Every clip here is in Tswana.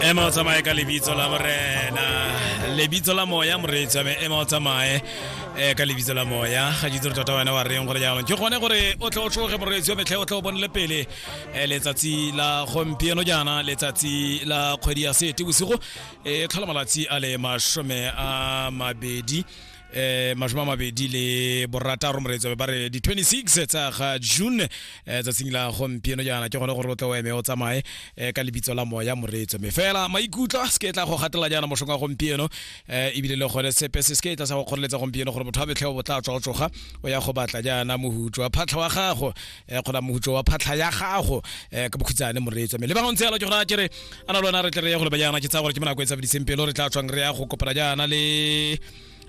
ema o tsamaye ka lebitso la morena lebitso la moya moreetsi ame ema o tsamaye um ka lebitso la moya ga ditse gore tota wena wa reng gore jaanong ke gone gore o tle o tlhoge moreetsi wa metlhe o tle o bonele pele um letsatsi la gompieno jaana letsatsi la kgwedi ya sete bosigo e tlhola malatsi a le masome a mabedi eh mashome a mabedi le borataro moreetsabe ba re di-26 tsa ga june eh tsatsing la gompieno jaana ke gone gore o tle o eme o tsamaye eh ka lebitso la moya moreetso me fela maikutlo a seke tla go gatela jaana moshong wa gompieno eh ebile le gone sepe se seke tla sa go kgoreletsa gompieno gore motho a betlhe o botla tswa o tsoga o ya go batla jaana mohutswa phatlha wa gago eh, kgona mogutso wa phatlha ya gago eh, ka bokhutsane moreetswa mme le bangwe ntse yalo ke gona ke re a na le wena re tle re ya go lebajana ke tsaya gore ke monako e tsabediseng pelo re tla tswang re ya go kopana jaana le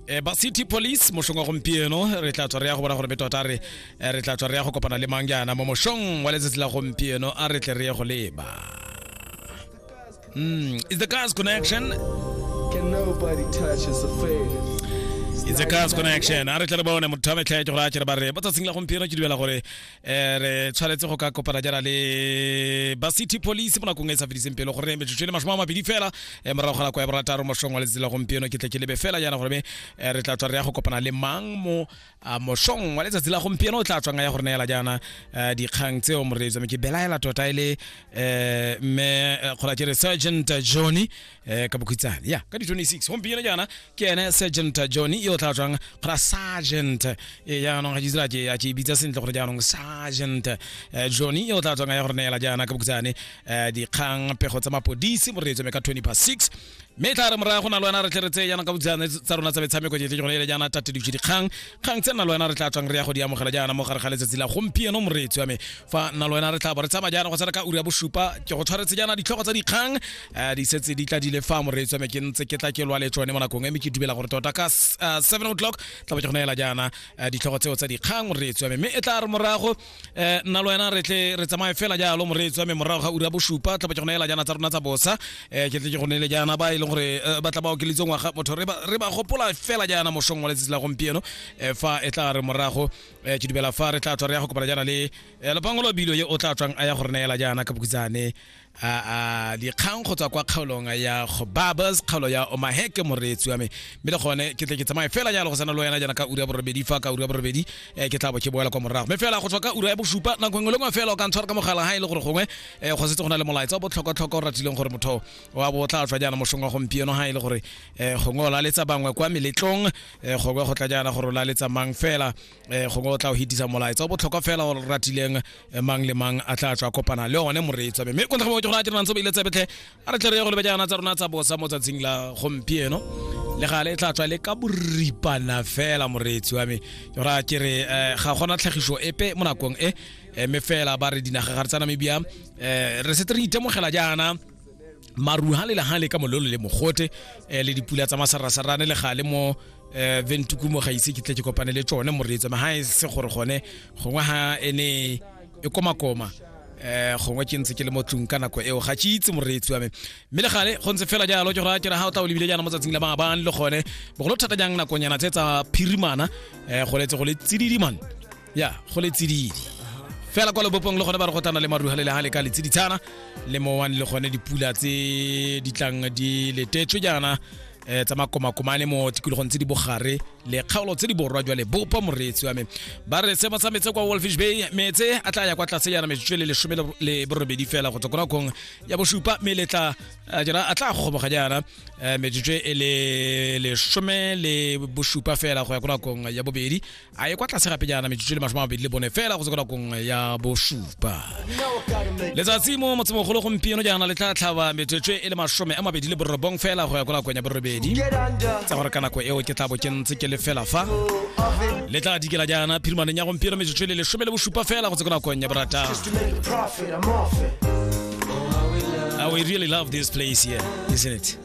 eh, ba city police mošong wa gompieno re tla tswa re ya go bona gore be tota re eh, re tla tswa re ya go kopana le mang jaana mo mošong wa letsatsi la gompieno a re tle re ye go leba Mm, it's the Cars Connection. Can nobody touch his affairs? It's a Cars Connection. A re tle re bone motho wa metlha e ke gore a kere ba re ba tsatsing la gompieno ke dumela gore eh, re tshwanetse go ka kopana jana le ba city police mo nakong e e sa fediseng pelo gore metsotso e le masome a mabedi fela eh, morago ga nako ya borataro mosong wa letsatsi la gompieno ke tle ke lebe fela jana gore me eh, re tla tswa re ya go kopana le mang mo a mošong wa letsatsi la gompieno o tla tswang ya gore neela jaana eh, dikgang tseo moreetsi me ke belaela tota e le eh, mme eh, kgora ke re sergeant johnny eh, ka bokhitsane ya ka di-26 gompieno jaana ke ene sergeant johnny yo o tla tswang kgora sergeant e jaanong ga ke itse la ke ya ke e bitsa sentle gore jaanong sergeant eh, johnny yo o tla tswang ya gore neela jaana ka bokhitsane eh, dikgang pego tsa mapodisi moreetsi me ka 20 past 6 mme e tla re morago na le wena re tle re tseye jaana ka botsana tsa rona tsa metshameko jetle ke gone ele jaana tate dikse dikgang kgang tse nna le wena re tla tswang re ya go di amogela jaana mo gare ga letsatsi la gompieno moreetsi wa me fa nna le wena re tla bo re tsamaya jaana go tsena ka uri ya bosupa ke go tshwaretse jaana ditlhogo tsa dikgang eh, di setse di tla di le fa moreetsi wa me ke ntse ke tla ke lwa le tsone mo nakong eme ke dumela gore tota ka s- eh, 7 o'clock tla bo ke go neela jaana eh, ditlhogo tseo tsa dikgang moreetsi wa me mme e tla re morago eh nna lo wena re tle re tsamaye fela jalo moreetsi wa me morago ga ura bosupa tla ba ke go neela jana tsa rona tsa bosa eh ke tle ke go neele jana ba e leng gore eh, ba tla ba okeletse ngwaga motho re ba re ba gopola fela jana mosong wa letsatsi la gompieno eh fa e tla re morago eh ke dumela fa re tla tswa re ya go kopana jana le eh, lopango lo bilo ye o tla tswang a ya go re neela jana ka bokutsane a a dikgang go tswa kwa kgaolong ya go babas kgaolo ya omaheke moreetsi wa me mme le gone ke tle ke tsamaye fela jalo go sana le wena jaana ka ura ya borobedi fa ka ura ya borobedi eh, ke tla bo ke boela kwa morago mme fela go tswa ka ura ya bosupa nako engwe le ngwe fela o ka ntshwara ka mogala ga e le gore gongwe eh, go setse go na le molaetsa o botlhokwatlhokwa o ratileng gore motho wa bo o tla tswa jaana mosong wa gompieno ga e le gore eh, gongwe o laletsa bangwe kwa meletlong eh, gongwe go tla jaana gore o laletsa mang fela eh gongwe o tla o hitisa molaetsa o botlhokwa fela o ratileng eh, mang le mang a tla tswa kopana le one moreetsa mme ko ntlha mo ke go ratela ntse ba ile tsebetlhe a re tle re ye go lebe jaana tsa rona tsa bosa mo tsatsing la gompieno le gale e tla tswa le ka boripana fela moreetsi wa me ke ra ke re eh, ga gona tlhagiso epe mo nakong e eh, mme fela ba re dinaga ga re tsa namibia eh, re setse re itemogela jaana maru ha le ha le ka mololo le mogote eh, le dipula tsa masarasarane le gale mo eh, ventuku mo ga ise ke tle ke kopane le tsone moreetso ma ha e se gore gone gongwe ha ene e komakoma eh gongwe ke ntse ke le mo tlung ka nako eo ga ke itse moreetsi wa me mme le gale go ntse fela jalo ke gore ke re ha o tla o lebile jaana mo tsatsing la maabane le gone bogolo thata jang nakonyana tse tsa phirimana eh go letse go le tsididimane ya go le tsididi fela kwa lebopong le gone ba re go tana le maruha le le ha le ka le tsiditshana le mowang le gone dipula tse di tlang di letetswe jaana eh tsa makomakomane mo tikologong tse di bogare le kgaolo tse di borwa jwa lebopo moreetsi wa me ba re seemo sa metse kwa wolfish bay metse a tla ya kwa tlase yana metsotso e le lesome le- le borobedi fela go tswa ko nakong ya bosupa mme le tla eh, jana a tla gogoboga jaana eh, metsotso e le lesome le bosupa fela go ya ko nakong ya bobedi a ye kwa tlase gape jaana metsotso le masome a mabedi le bone fela go tsekela kong ya bosupa letsatsi mo motsemogolo gompieno jaana le tla tlhaba metsotso e le masome a mabedi le borobong fela go ya kwa nakong ya borobedi tsa gore ka nako eo ke tla bo ke ntse ke le fela fa le tla dikela jaana phirimaneng ya gompieno metsotso e le lesome le bosupa fela go tsekela kong ya boratang I really love this place here, isn't it?